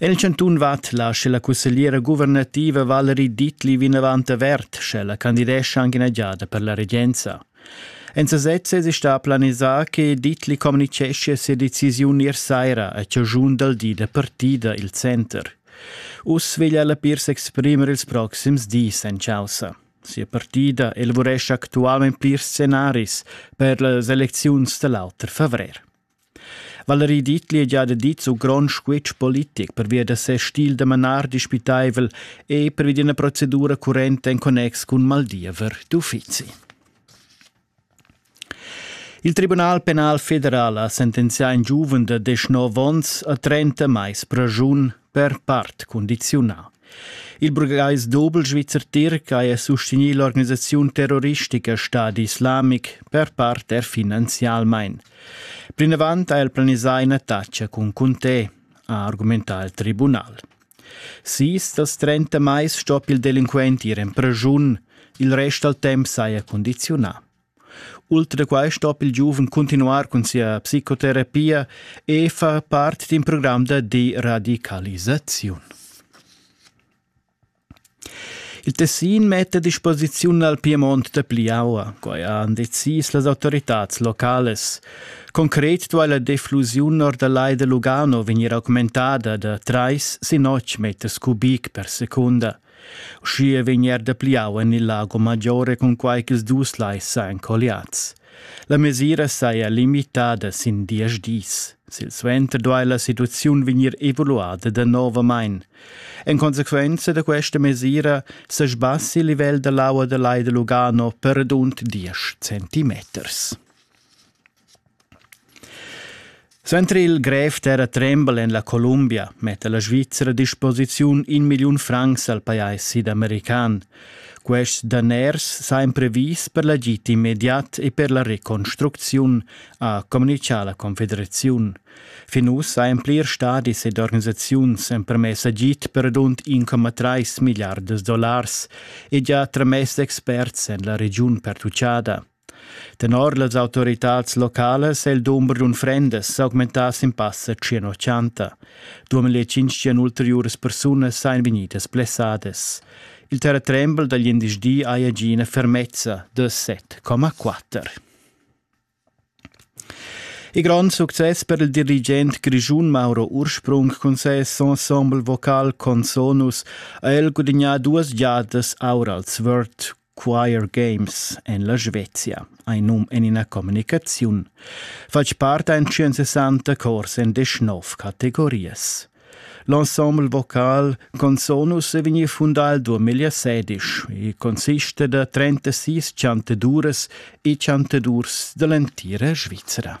El chantun vat la sche la cussegliera guvernativa Valerie Dittli vinavant avert, sche la candidescha anche ina giada per la regenza. En sesez es sta planisà che Dittli communiceschia sia decisiun ier saira a chagiun dal di da partida il center. Uss veglia la Pirs exprimer ils proxims dis en chaussa. Sia partida elaborescia actualment plirs scenaris per las elecziuns da l'auter favrer. Valerie Dietli ha già dit su grond squitsch politic pervia da ses stil da manar dispitaivel e pervi d'ina procedura currenta en connex cun maldiever d'uffizi. Il Tribunal penal federal ha sentenzià in giuven da 19 onns a 30 mais pragiun per part condiziunà. Il burgais Dobelschweizer Tirc ha sustegni l'organisaziun terroristica Stadi Islamic per part er finanzialmein. Plinavant ha el planisà ina taxa cun Conté, ha argumentà il tribunal. Sis dals trenta mais stoppia il delinquent ir en preschun, il rest dal temp saja condiziunà. Ultra da quai stoppa il giuven continuar cun sia psicoterapia e fa part d'in program da deradicalisaziun. Il Tessin metta a disposiziun al Piemont dapli aua, quai han decis las autoritads localas. Concret duai la deflusiun or dal Lai da Lugano vegnir augmentada da trais sin otg meters cubic per secunda. Uschia vegn er dapli aua en il Lago Maggiore cunquai ch'ils dus lais sajan colliads. La mesira saja limitada sin diesch dis. Silsuenter duai la situaziun vegnir evaluada danovamain. En consequenza da questa mesira sa sbassi il livel da l'aua da Lai da Lugano per rund 10 centimeters. Suenter il grev terratrembel en la Columbia metta la Svizra a disposiziun in milliun francs al pajais sidamerican. Quests daners sajan previs per l'agid immediat e per la reconstrucziun, ha communitgà la Confederaziun. Fin uss sajan plirs stadis ed organisaziuns empermess agid per rund 1,3 milliardas dollars e gia tramess experts en la regiun pertutgada. Tenor las autoritads localas è il dumber d'unfrendas s'augmentà sin passa 180. 2500 ulteriuras persunas sajan vegnidas blessadas. Il terratrembel da glindesdi haja gì ina fermezza da 7,4. Il grond success per il dirigent grischun Mauro Ursprung cun ses ensemble vocal Consonus ha el gudagnà duas giadas aur als Word Choir Games en la Svezia ei num en ina communicaziun. Fatg part ein 160 cors en 19 categorias. L'ensemble vocal Consonus è vegnì fundà il 2016 e consiste da 36 chantaduras e chantadurs dall'entira Svizra.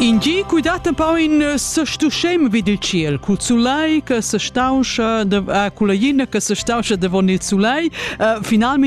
In gi cu dat pau in sestuschem vid il ciel cul sulai che sestauscha de, uh, cul la ina che sestauscha davon il sulai uh, finalmente